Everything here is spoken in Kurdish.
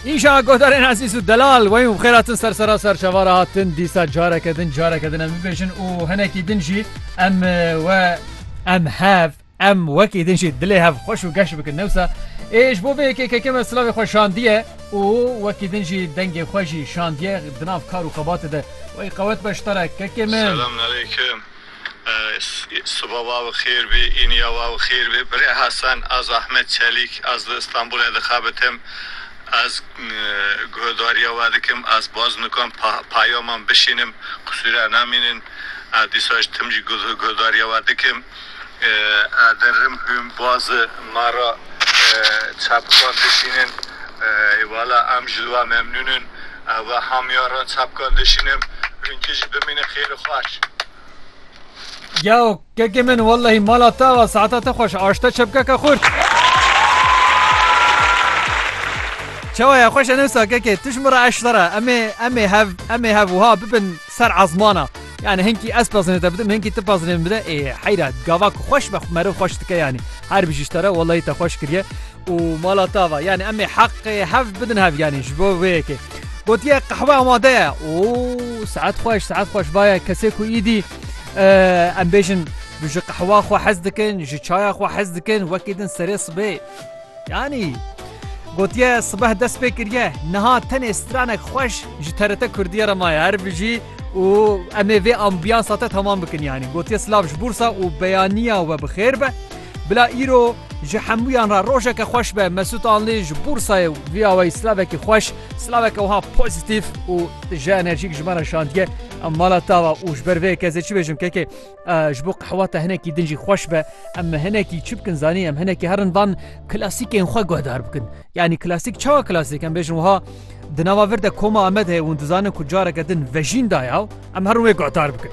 Îşa godarên ezîz û delal wey û xêra tin ser sera ser çavara hatin dîsa careke din careke din em bibêjin û hinekî din jî em we em hev em wekî din jî dilê hev xweş û geş bikin newsa êj bo vê yekê keke me silavê xwe şandiye û wekî din jî dengê xwe jî şandiye dinav kar û xebatê de wey qewet beştare kekê min. Siba wa bi xêr bî, îniya wa bi xêr bî. Birê Hasan, Ez Ahmet Çelîk, ez li Îstanbulê dixebitim. Ez guhedariya we dikim, ez baz nikim peyaman bişînim, qisûre namînin. Ez dîsa ji tim jî guhedariya we dikim. Ez dirim ku baz me re çepikan dişînin. Wala em ji li we memnûn in. Ev e hamiya ra çapkan dişînim rinkê jî bimîne xêr û xweş. Geo kekê min wellehî mala te va saeta te xweş aşte çepkeke xurt. Çawa ya xweş e newsa kekê tu ji min re eş sere emê emê hev emê hev wiha bibin ser ezmana. Yani hinkî ez pezinê te bidim hinkî tu pezinê min bide ê heyra gava ku xweş be meriv xweş dike yanî. Her bijî ji te re wellehî te xweş kiriye. û mala tava yanî em ê heqê hev bidin hev yanî ji bo vê yekê gotiye qehwe amade ye û saet xweş saet xweş vaye kesê ku îdî em bêjin ji qehwa xwe hez dikin ji çaya xwe hez dikin wekî din serê sibê yanî gotiye sibeh dest pê kiriye niha tenê stranek xweş ji terete kurdiye re maye her bijî û em ê vê ambiyansa te temam bikin yanî gotiye silav ji bûrsa û beyaniya we bi xêr be Bila îro ji hemûyan re rojeke xweş be Mesût Anlî ji Bûrsayê û vîya wê silavekî xweş, silaveke wiha pozîtîf û ji enerjîk ji me re şandiye. Em mala tava û ji ber vê yekê ez ê çi bêjim kekê ji bo qehwa te hinekî din jî xweş be em hinekî çi bikin zanî em hinekî herin van klasîkên xwe guhdar bikin. Yanî klasîk çawa klasîk em bêjin wiha di nava vir de koma Amed heye hûn dizanin ku careke din vejîn daye em herin wê guhdar bikin.